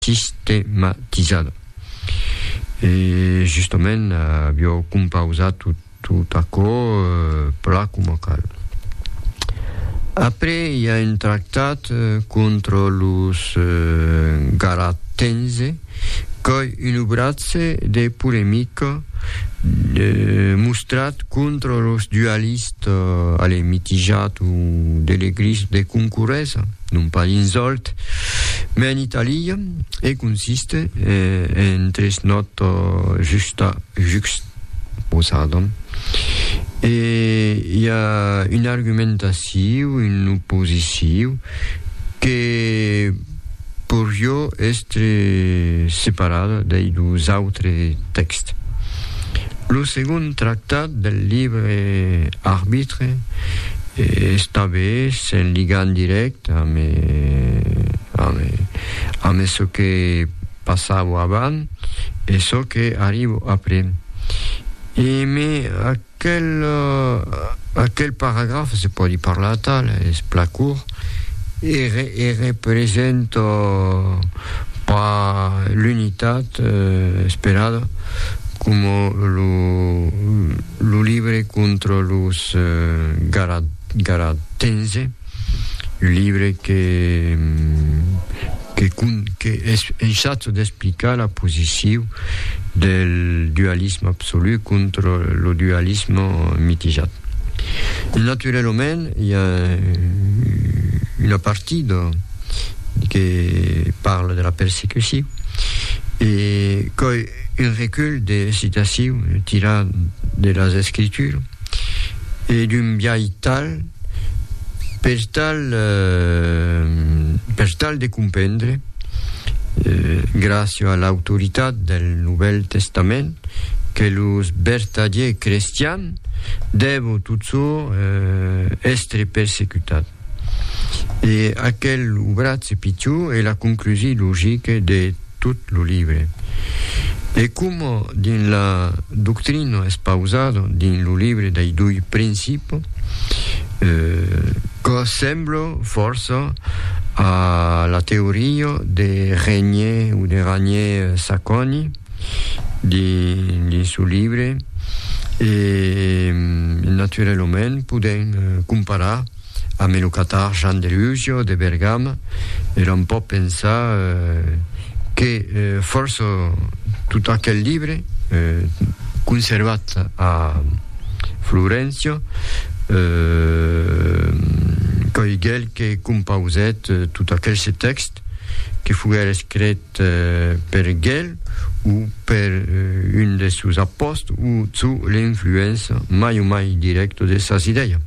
sistematizada. E justament avió compausat tot aquò plan coma cal. Après i a un tractat contra los garatense qu'ei un obratge de polemica mostrat contra los dualistes, allez, mitijat o de l'eglise de concorresa. non pas insòlt, mai en Itàlia, e consiste en tres nòta justa juxposada. E i a un argumentaciu, un oposiciu, que porió èstre separada dei dos autres tèxts. Lo segond tractat del libre arbitre Estabe en ligam dirèct ame çò que passavo avant e çò que arribo après. E me aquel paragraf, se pòdi parlar atal, es plan curt, e representa pas l'unitat esperada coma lo Lo libre contra los Garatense, un libre que es enchaç d'explicar la posicion del dualisme absolu contra lo dualisme mitijat. E naturalament i a una partida que parla de la persecucion e quò Un recull de citacion tirat de las Escritures e d'un biais tal per tal per tal de comprendre, gràcia a l'autoritat del Novèl Testament, que los vertadiers crestians dèvon totjorn èstre persecutats. E aquel obratge pichon e la conclusi logique de tot lo libre. E coma dins la doctrina espausada dins lo libre dei doi principi, que sembla fòrça a la teoria de Regnier o de Ragnier-Sacconi, dins lo libre e naturalament podèm comparar ambe lo catar Jan de Rusio de Bergama e l'on pòt pensar que fòrça tot aquel libre conservat a Florencio qu'ei quel que compausèt tot aquel se tèxt que foguèt escret per gel o per un de sos apòst o çu l'influença mai o mai dirècto de sas idèia.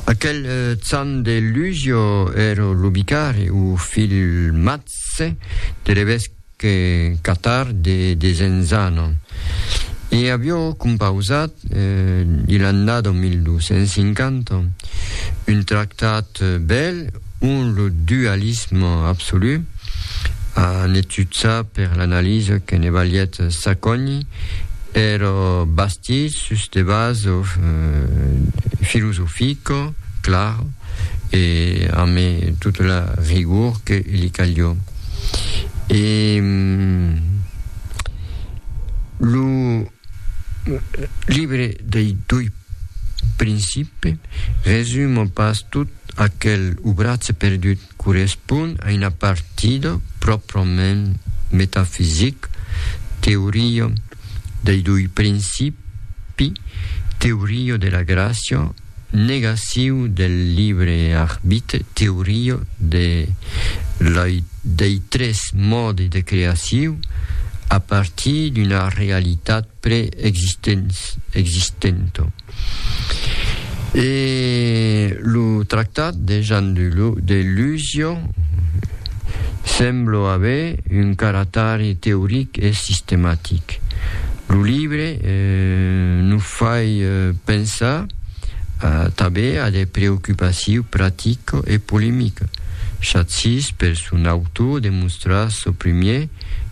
Aquel Can de Lugio ero lo vicari o filmatse de l'evesque Catar de Desenzano e avió compausat dil'annada 1250 un tractat bèl Un lo dualisme absolu, en etudsar per l'analisa que ne valièt s'acogni, ero bastit sus de base filosofica clara e ame tota la rigor que li calió. E lo libre dei dui principes resuma pas tot aquel obratge perdut, correspon a una partida pròprament metafisic, teoria dei dui principis, teoria de la gràcia, Negaciu del libre arbitre, teoria de la dei tres mòdi de creaciu a partir d'una realitat pre-existenta. E lo tractat de Jean de Luzio, Semblo aver un caratari teoric e sistematic. Lo libre no fai pensar tanben a de preocupaciu practica e polemica, chacís per son autor demostrar çò primier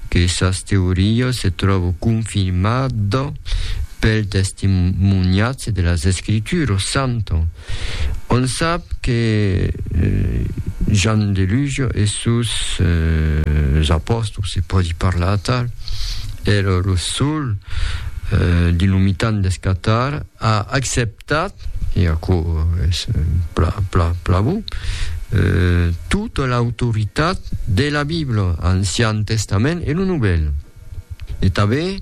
que sas teorias se tròvo confirmada pel testimoniatge de las Escrituras santas. On sap que Jan Delugio e sus apòstols, se pòdi parlar atal, èra lo sol dins lo mitan deth Catar a acceptat, e aquò es plan bon, tota l'autoritat de la Bibla, Ancian Testament e lo Novèl. E tanben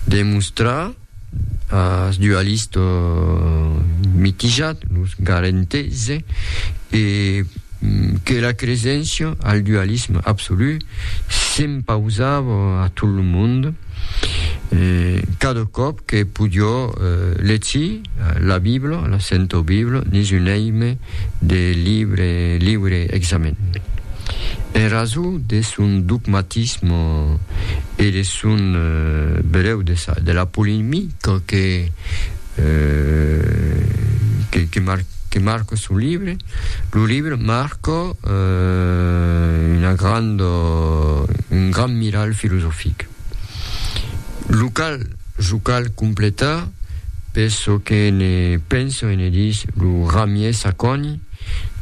demostrar ath dualista mitijat, los garentes, e que la creséncia al dualisme absolut s'impausava a tot lo monde cada còp que podió legir la Bibla, la Senta Bibla, dins un èime de liure examen. En rason de son dogmatisme e de son bereu de la polemica que marca son libre, lo libre marca un grand miralh filosofic. Lo cal, jo cal completar, per çò que ne penso e ne dis lo Ramier Sacconi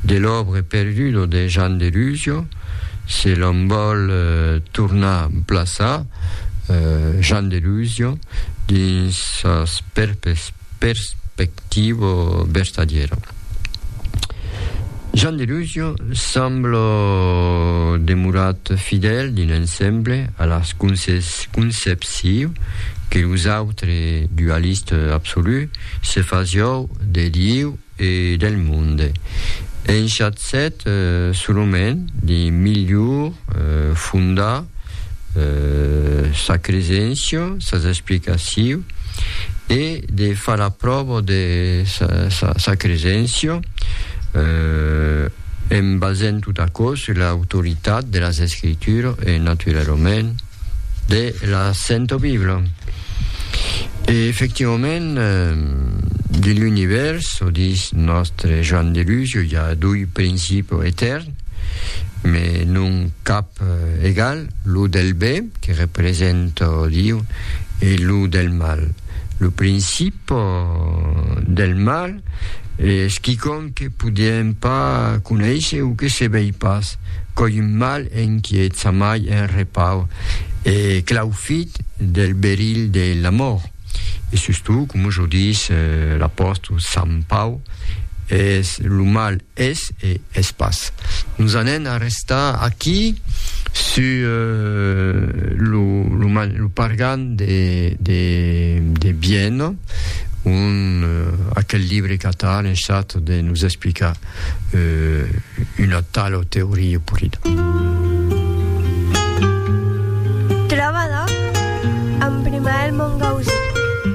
de l'Obre perdudo de Jean Delusio, se l'òm vòl tornar plaçar Jean Delusio dins sas perspectivas, Tibo Berstadiero. Jean Delusio sembla demorat fidèl d'un ensemble a la concepcion que los autres dualistes absolus se fasiou de Dieu e del monde. Enchatzèt solament de milhor fondar sa cresencio, sas explicaciu e de far a provo de sa, sa, sa cresencio en basent tot aquò sur l'autoritat de las escritura e naturalament de la Sento Bibla. E efectivament de l'univers, o dis nòstre Joan de Luz, i a dui principio etern, me non cap egal, lo del be, que represento Diu, e lo del mal. Lo principo del mal es quicòm que podiem pas conéisher o que se vei pas, coi un mal enquiet sa mai en repau e claufit del berilh de l'amor. E sustot, coma jo dis, l'apòstol Sant Pau, es lo mal Es e es pas. Nos anem a restar aquí sus lo pargan de Bienne, ont aquel libre qu'Ata a lençat de nos explicar una tala teoria polida. Trobada amb Primael Mongausí.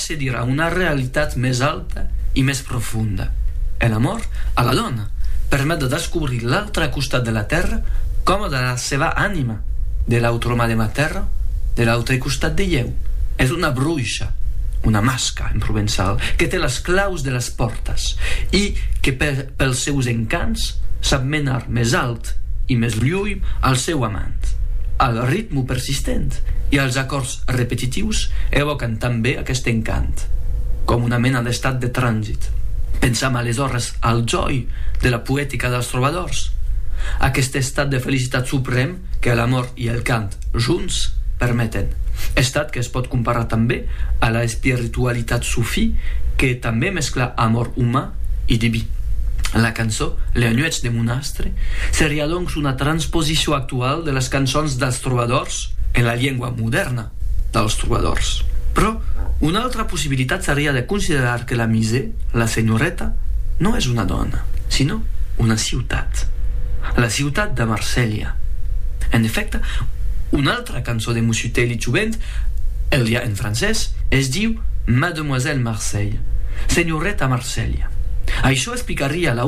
Se dirà una realitat mès alta e mès profonda. E l'amor a la dòna permet de descobrir l'autre costat de la tèrra coma de la seva anima, de l'autre mà de ma tèrra, de l'autre costat de ieu. Es una bruisha, una masca en provençal, que te las claus de las pòrtas e que pels seus encants sap menar mès alt e mès luòi al seu amant, al ritme persistent e als acòrds repetitius evòcan tanben aqueste encant, coma una mena d'estat de transit. Pensam aleshores al jòi de la poetica dels trobadors, aqueste estat de felicitat suprèm que l'amor e el cant junts permeten, estat que es pòt comparar tanben a la espiritualitat sufí que tanben mescla amor uman e diví. La cançó La nuèch de mon astre seriá donc una transposicion actuala de las cançons dels trobadors, trobadors, en la lengua modèrna dels trobadors. Però una autra possibilitat seriá de considerar que la Musée, la senhoreta, non es una dòna, sinó una ciutat, la ciutat de Marselha. En efècte, una altra cançó de Mussutèli Jovent, el ja en francés, es diu Mademoiselle Marseille, Senhoreta Marselha. Aiçò explicaria la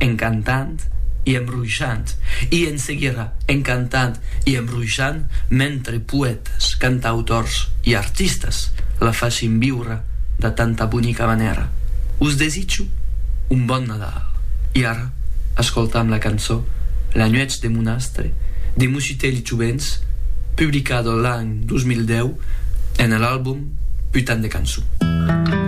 en cantant e en ruishant, e en seguira en cantant e en ruishant mentre poètas, cantautors e artistas la fassin viure de tanta bonica manèra. Us desitjo un bon Nadal e ara escoltam la cançó La nuèch de Monastre de Musitelhs Jovents publicada l'an 2010 ena l'album Putain de cançon.